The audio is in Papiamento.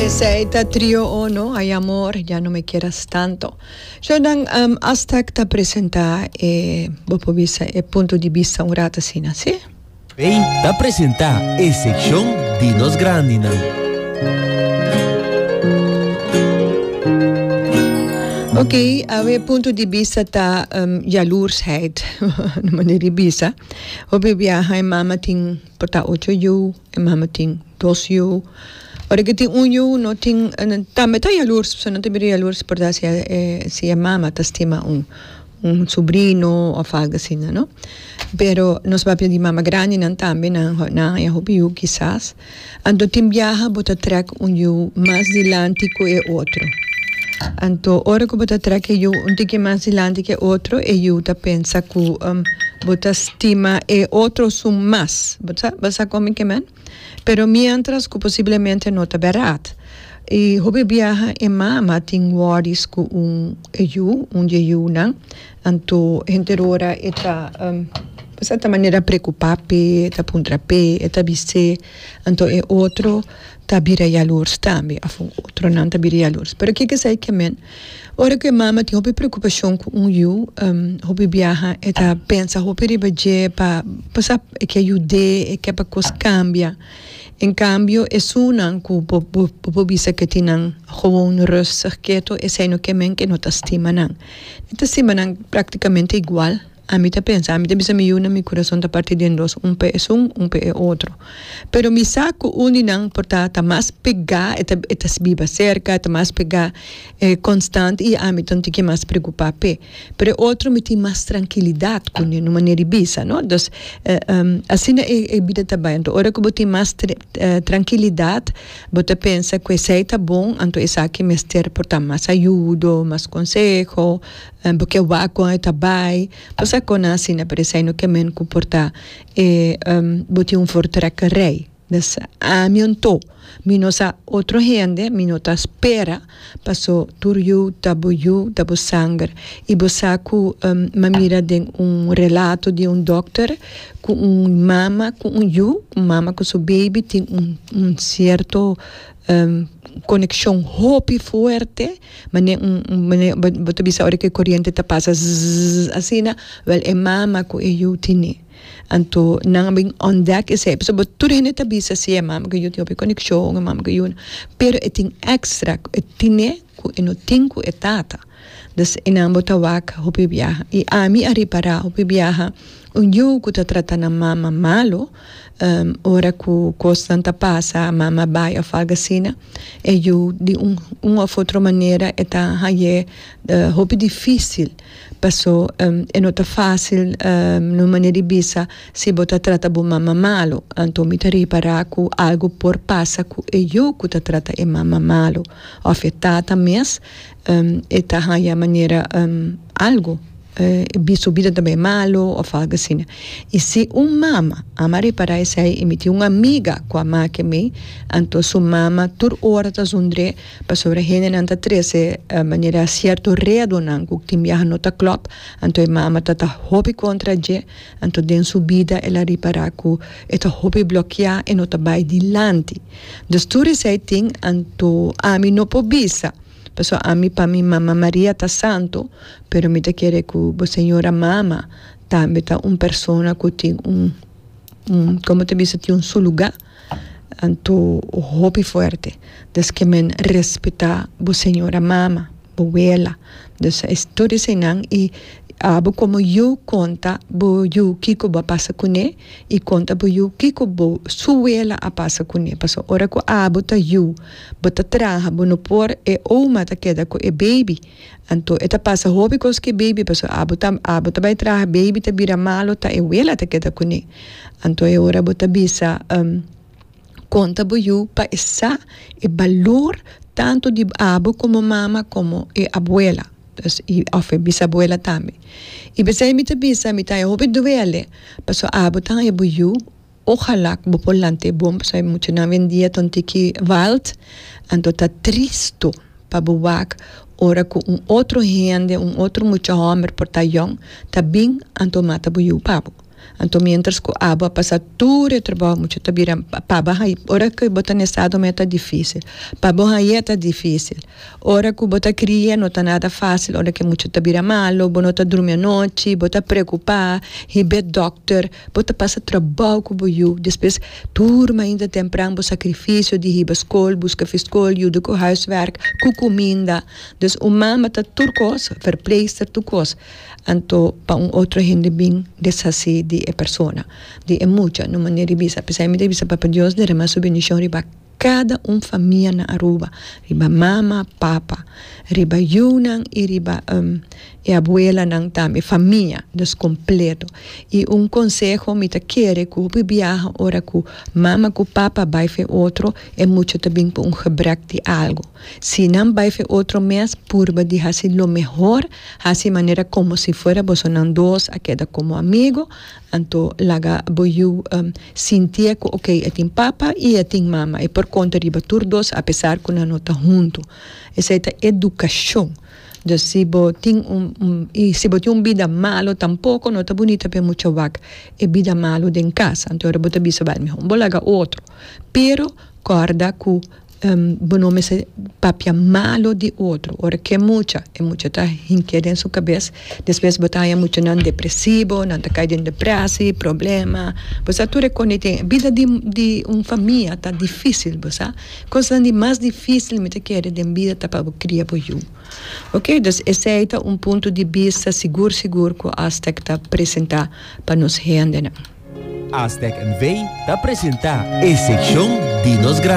Esey ta trio o no ay amor ya no me quieras tanto so nan Aztec ta presenta e bo por bisa e punto di bista un rato asina si. Bay ta presenta e seccion di nos grandi nan. Ok awe e punto di bista ta jaloersheid no manera di bisa hopi biaha e mama tin por ta ocho yu. E mama tin dos yu. Ora ke tin un yu no tin tambe ta yalurs paske no ta bira yalurs por ta si si e mama ta stima un un subrino of algo asina no pero nos papia di mama grandinan tambe nan nan a hopi yu kisas anto tin biaha bo ta trek un yu mas dilanti ku e otro anto ora ku bo ta trek e yu un tiki mas dilanti ku e otro e yu ta pensa ku bo ta stima e otro esun mas. Bo sa con mi ke men? Pero mientras cu posiblemente no ta berat. Y hopi biaha e mama tin worries cu un e yu, un di e yunan. Anto henter ora e ta bo sa ta manera preocupa p'e, e ta puntra p'e, e ta bis'é. Anto e otro ta bira yalors tambe of otronan ta bira yalors. Pero kiko esei ke men? Ora ku e mama tin hopi preokupashon ku un yu hopi biaha e ta pensa hopi riba dje pa pasá e ke yud'é e ke pa kos kambia en kambio esunnan ku bo por bisa ke tin nan gewoon rustig keto esei no ke men ke no ta stima nan nan ta stima nan praktikamente igual. Ami ta pensa, ami ta bisa mi yu nan mi kurason ta parti den dos, un p'e esun, un p'e e otro. Pero mi sa ku un di nan por ta ta mas pegá, e ta e ta biba serka, e ta mas pegá, e konstant i ami ta un tiki mas preokupá p'e. Pero e otro mi tin mas trankilidat ku un manera di bisa, no? Dus, asina e e bida ta bai. Anto ora ku bo tin mas trankilidat bo ta pensa ku esei ta bon, anto esaki mester por ta mas ayudo, mas konseho. Nan por ke wak kon e ta bai. Pasa kon nan asina pero esai no ke men ku por ta e bo tin un voortrekker rij. Des ami anto mi no sa otro hende mi no ta spera paso tur yu ta bo yu ta bo sanger i bo sa ku mi a mira den un relato di un dòkter ku un mama ku un yu un mama ku su baby tin un sierto konekshon hopi fuerte mane un mane bo ta bisa ora ku e koriente ta pasa zzzzz asina wèl e mama ku e yu tini anto nan a bin ontdek esei p'esei bo tur hende ta bisa si e mama ku e yu tin hopi konekshon e mama ku e yu pero e tin èkstra ku e tine ku e no tin ku e tata dus e nan bo ta wak hopi biaha i ami a repará hopi biaha un yu ku ta trata nan mama malo. Ora ku kosnan ta pasa mama bai òf algu asina e yu di un un òf otro manera e ta hañ'é hopi difísil pasó e no ta fásil na un manera di bisa si bo ta trata bo mama malu anto mi ta repará ku algu por pasa ku e yu ku ta trata e mama malu òf e tata mes. e ta haya manera algo bi su bida ta bay malo of algo asina y si un mama a mari para esey y mi tin un amiga cu a make mi anto su mama tur ora ta zundre pasobra hendenan ta trece manera cierto redonan cu tin biaha no ta club anto e mama ta ta hopi contra dje anto den su bida el a ripara cu e ta hopi blokia e no ta bay dilanti dus tur esey tin anto ami no por bisa Pasobra ami, pa mi Mama Maria ta santo, pero mi ta kere ku bo Señora Mama tambe ta un persona ku tin un, un, komo ta bisa, tin su lugá, anto hopi fuerte. Des ke men respetá bo Señora Mama, bo Wela. Des es tur eseinan i abo komo yu konta bo yu kiko bo a pasa kuné. I konta bo yu kiko bo su wela a pasa kuné, paso ora ku abo ta yu, bo ta traha, bo no por e oma ta keda ku e beibi. Anto e ta pasa hopi kos ku e beibi, paso abo ta abo ta bai traha, beibi ta bira malu ta e wela ta keda kuné. Anto e ora bo ta bisa, um. konta bo yu pa e sa e balur tantu di abu komo mama komo e abuela òf e bisabuela tambe i p'esei mi ta bisa mi ta hopi duele paso abu ta haña bo yu ojala ku bo por lanta e bon pasobra muchanan hoy en dia ta un tiki valt anto ta tristu pa bo wak ora ku un otro hende un otro mucha hòmber por ta yòn ta bin anto mata bo yu pabu. Anto mientras cu abo a pasa tur e trabou mucha ta bira pa bo haye ora cu bo ta na estado me ta dificil pa bo haye ta dificil ora cu bo ta cria no ta nada facil ora que mucha ta bira malo bo no ta drumi anochi bo ta preocupa hibe doctor bo ta pasa trabou cu bo yu despues tur mainda tempran bo sacrificio di hiba school busca fi school yuda cu huiswerk cu cuminda dus un mama ta tur cosa verpleegster tur cosa. Anto pa un otro hende bin deshasí di e persona, di e mucha, no manera di bisa. P'esei mi ta bisa Papa Dios derramá su bendishon riba kada un famia na Aruba, riba mama, papa, riba yunan i riba e abuelanan tambe, famia dus kompleto. I un konseho mi ta kere ku hopi biaha ora ku mama ku papa bai for e otro, e mucha ta bin ku un gebrek di algu. Si nan bai fe otro mes, purba di hasi lo mehor, hasi manera komo si fuera boso nan dos a keda komo amigu, anto laga bo yu sintié ku ok, e tin papa i e tin mama, e por konta riba tur dos apesar ku nan no ta huntu. Esei ta edukashon. Dus si bo tin un, un, i si bo tin un bida malu tampoko no ta bunita pa e mucha wak e bida malu den kasa, anto ora bo ta bisa bal mehor bo laga otro. Pero kòrda ku. bo no mester papia malo di otro ora ke mucha e mucha ta hink'é den su kabes despues bo ta haña muchanan depresibo nan ta kai den deprèsi problema bo sa tur e kon ei tin bida di di un famia ta difísil bo sa kosnan di mas difísil mi ta kere den bida ta pa bo kria bo yu okay dus esei ta un punto di bista sigur sigur ku Astec ta presentá pa nos hende nan. Astec NV ta presentá e sekshon di nos.